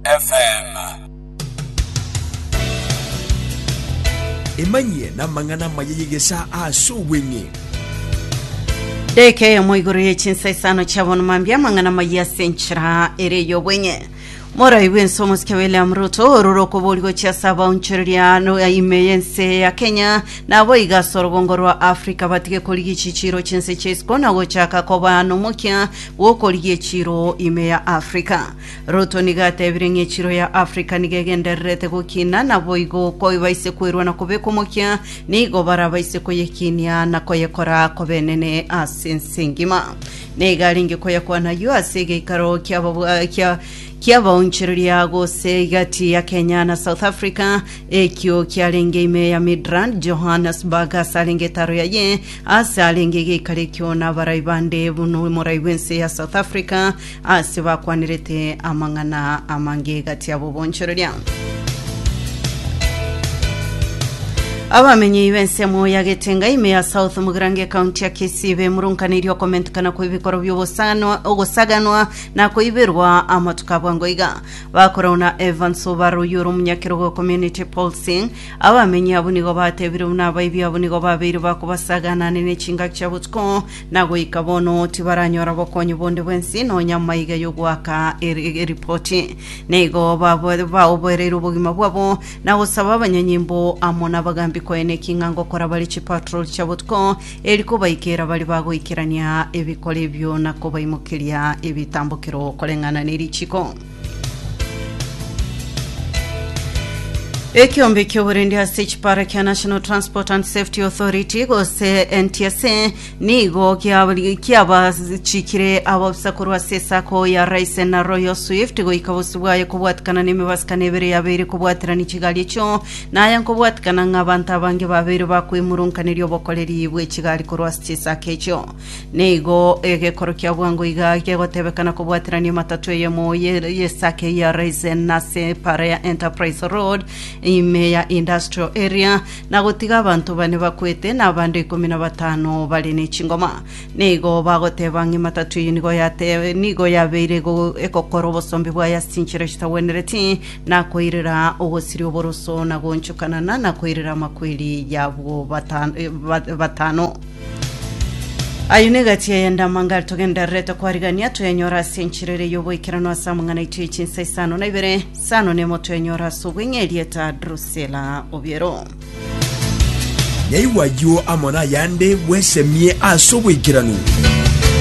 FM. Emanyie namang'ana amaya y'egesaa ase obweng'e. Deka eyemo igoro ye chinsa isano chiabono mambia amang'ana amaya ase enchera ere ey'obweng'e morai bwense omosike william ruto orure okobori gochia ase abaonchoreria no ime y'ense ya kenya nabo iga ase orobongo rwa africa batige korigia echichiro chinse chia isiko na gochaka koba nomokia bw'okorigia echiro ime ya africa Ruto nigo atebire ng'a echiro ya Africa nigo egendererete gokina, naboigo koibaise koirwa na kobekwa omokia, nigo barabaise koyekinia na koyekora kobenene ase ense engima. Nigo arenge koyakwana ayio ase egeikaro ki'ababwa- kia- ki'abaonchoreria gose egati ya Kenya na South Africa, ekio kiarenge ime ya Midrand, Johannesburg, ase arenge etaro yaye, ase arenge egeikaro ekio nabarai bande buna omorai bw'ense ya South Africa, Ase bakwanirete amang'ana amange egati abo bonchoreria. Abamenyei b'ensemo ya Getenga ime ya South Mugirango ekaunti ya Kisii bemurunkaneirie okomentikana kw'ebikoro bi'ogosanwa ogosaganwa na koiberwa amatuko abwango iga. Bakorau na Evans Obara oyio ore omonyakerogo o Community Pulsing. Abamenyi abwo nigo batebire buna abaibi abwo nigo babeire bakobasaganane ne chingaki chia botuko Na goika bono tibaranyora bokonyi bonde bw'ense, nonya amaiga y'ogoaka eri- eripoti. Na igo baboe- baoboereire obogima bwabo, na gosaba abanyanyimbo amo n'abagaambi koena eking'anga okora bare chipatrol chia botuko, eri kobaikera baria bagoikerania ebikoro ebio na kobaimokeria ebitambokero koreng'ana nerichiko. Ekeombe ki'oborindi ase chipara kia National Transport and Safety Authority gose NTSA nigo gia- giabachikire abaofisa korwa ase esako ya Raisen na Royal Swift goika bosio bwaye kobwatikana n'emebasibkano ebere yabeire kobwaterani chigari echio na aya nkobwatikana ng'a abanto abange babeire bakoimurunkaneria obokoreri bw'echigari korwa ase chisako echio. Nigo egekoro kia bwango iga gegotebekana kobwaterania matatu eyemo ye- y'esake ya Raisin nase epaara ya Enterprise Road ime ya Industrial Area, na gotiga abanto bane bakwete na abande ikomi na batano bare ne chingoma. Nigo bagoteba ng'a ematatu eyio nigo yate- nigo yabeire ego- egokora obosombe bwaye ase chinchera chitagwenereti, na koirera ogosiria oboroso, na goonchokanana, na koirera amakweri y'abwo bata- eh, ba- batano. Ayio negati eye ndamangare togendererete kwarigania, toyenyora ase enchera ere y'oboikeranu ase amang'ana aito ye chinsa isano na ibere, isano na emo toyenyora ase obweng'e erieta Drusila Obiero. Nyaigwa ayio amo nayande bwesemie ase oboikeranu.